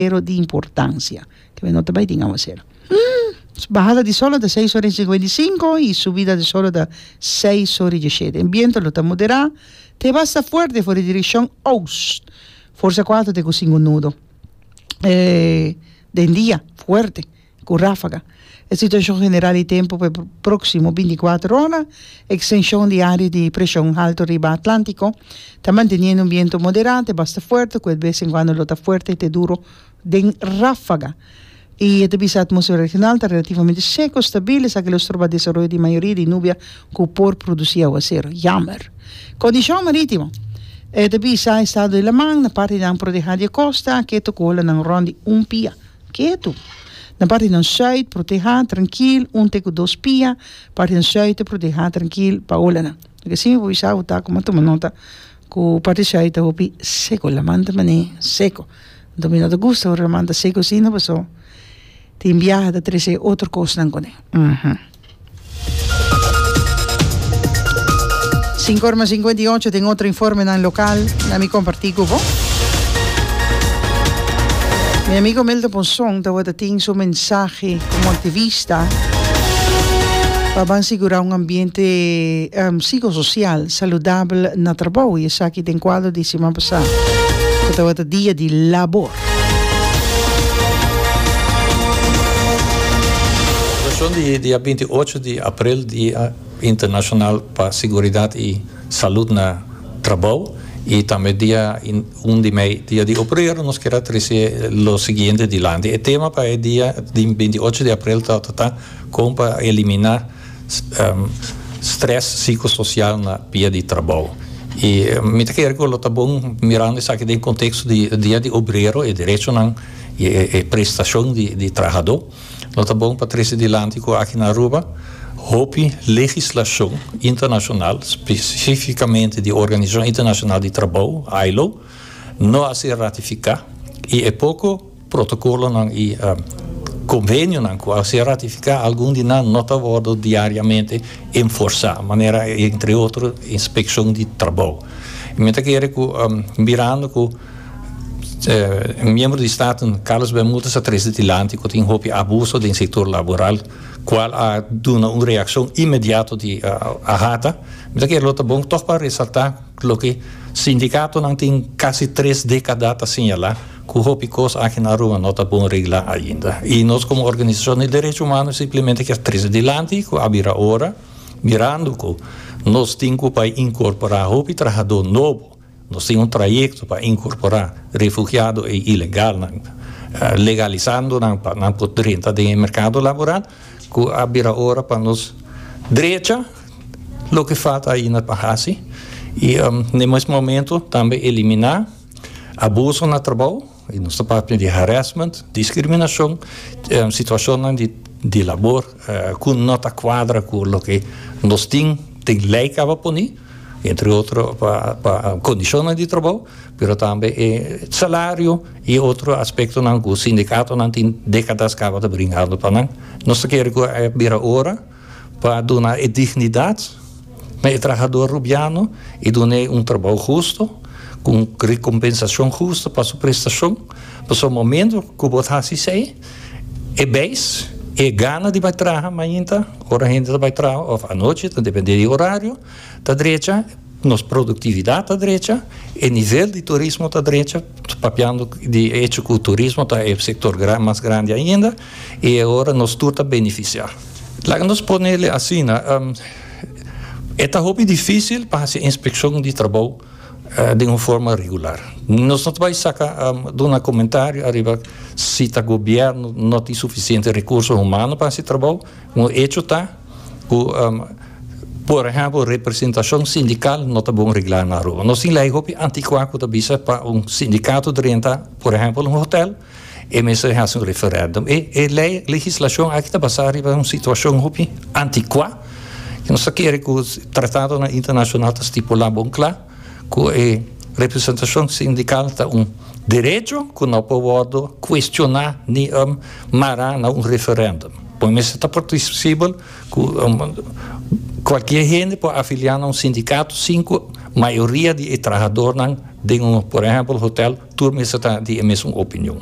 Pero di importancia. Te bay nota bay tin awacer. Hm. Bahada di solo ta seis ora y cincuenta y cinco y subida di solo ta seis ora y diecisiete. En biento lo ta modera te basta fuerte for di direccion oost, forza cuatro te cu cinco nudo den dia fuerte. ku ráfaga. E situashon general di tempu pa e próksimo bintikuater ora, ekstenshon di área di preshon haltu riba Atlántiko ta manteniendo un bientu moderá te basta fuerte ku e bes en kuando lo ta fuerte te duro den ráfaga i e ta bisa atmósfera regional ta relativamente seko, stabil, esaki lo stroba desaroyo di mayoria di nubia ku por produsí aguasero. Yammer. Kondishon marítimo. E ta bisa estado di laman na partinan prodehá di e kosta ke tokó lanan rònt di un pia. Ketu. Na parti nan shuit, protehá, trankil, un te ku dos pia, parti nan shuite, protehá, trankil, Paola nan. Lo ke si mi por bisa bo ta ku m'a tuma nota ku parti shuit ta hopi seko, laman ta mane seko. Anto mi no ta gusta ora laman ta seko asina paso tin biaha ta trese otro kosnan kuné. Sinku ora mas sinkuenta i ocho tin otro informenan lokal na mi kompartí ku bo. Mi amigo Milton Monson tabata tin su mensahe komo aktivista pa ban sigurá un ambiente psikososial saludabel na trabou i esaki den kuadro di siman pasá ku tabata dia di labor. Okashon di dia binti ocho di aprel Dia Internashonal pa Siguridat i Salud na Trabou i tambe dia un di mei Dia di Obrero nos kier a trese lo siguiente dilanti. E tema pa e dia di binti ocho di aprel tabata ta kon pa eliminá. Stress psicosocial na pia di trabou. Y mi ta kere cu lo ta bon mirando esaki den contexto di Dia di Obrero, e derechonan y e prestacion di trahador. Lo ta bon pa trece dilanti cu aki na Aruba hopi legislacion internacional, specificamente di Organisacion Internacional di Trabou, ILO, no a ser ratifica y e poco. Protocolonan y convenionan cu a ser ratifica algun di nan no ta wordo diariamente enforsa, manera entre otro inspeccion di trabou. Y mi ta kere cu mirando cu miembro di Staten Carlos Bermudez a trece dilanti cu tin hopi abuso den sector laboral cual a duna un reaccion inmediato di Ahata, mi ta kere lo ta bon toch pa resalta loke sindicatonan tin casi tres decada ta señala. Cu hopi cos aki na Aruba no ta bon regla ainda. Y nos como organizacion di derecho humano simplemente kier trece dilanti cu a bira ora, mirando cu nos tin cu bay incorpora hopi trahador nobo. Nos tin un trayecto pa incorpora refugiado y ilegalnan, legalizando nan pa nan por drenta den e mercado laboral cu a bira ora pa nos drecha loke falta ainda pa haci y ne mes momento tambe elimina. Abuso na trabou, y nos ta papia di harassment, discriminacion, situacionnan di labor cu no ta cuadra cu loke nos tin den ley caba poni, entre otro pa condicionnan di trabou, pero tambe e salario y otro aspectonan cu sindicatonan tin decadas caba ta bringando pa nan. Nos ta kere cu a bira ora. pa duna e dignidat na e trahador rubiano y dun'e un trabao husto cu un recompensacion husto pa su prestacion, pasobra momento cu bo ta haci esey e beis y e gana di bay traha mainta ora hende ta bay traha of anochi ta depende di e horario ta drecha, nos productividad ta drecha, e nivel di turismo ta drecha, papiando di e hecho cu turismo ta e sector mas grandi ainda. I e ora nos tur ta benefisiá. Laga nos pone el asina, E ta hopi difísil pa hasi inspekshon di trabou den un forma regular. Nos no ta bai saka duna komentario ariba si ta gobièrnu no tin sufisiente rekurso humano pa hasi e trabou. Un echo ta ku, por ehèmpel, representashon sindikal no ta bon reglá na Aruba. Nos tin lei hopi antikuá ku ta bisa pa un sindikato drenta, por ehèmpel, un hotèl. E mester a hasi un referendum. E e lei, legislacion aki ta basa riba un situacion hopi anticua, cu nos ta kere cu tratadonan internacional ta stipula bon cla cu e representacion sindical ta un derecho cu no por wordo cuestiona ni mara na un referendum. Bo mester ta participabel. Cu cualkier hende por afilia na un sindicato sin cu mayoria di e trahadornan den un, por ehempel, hotel tur mester ta di e mesun opinion.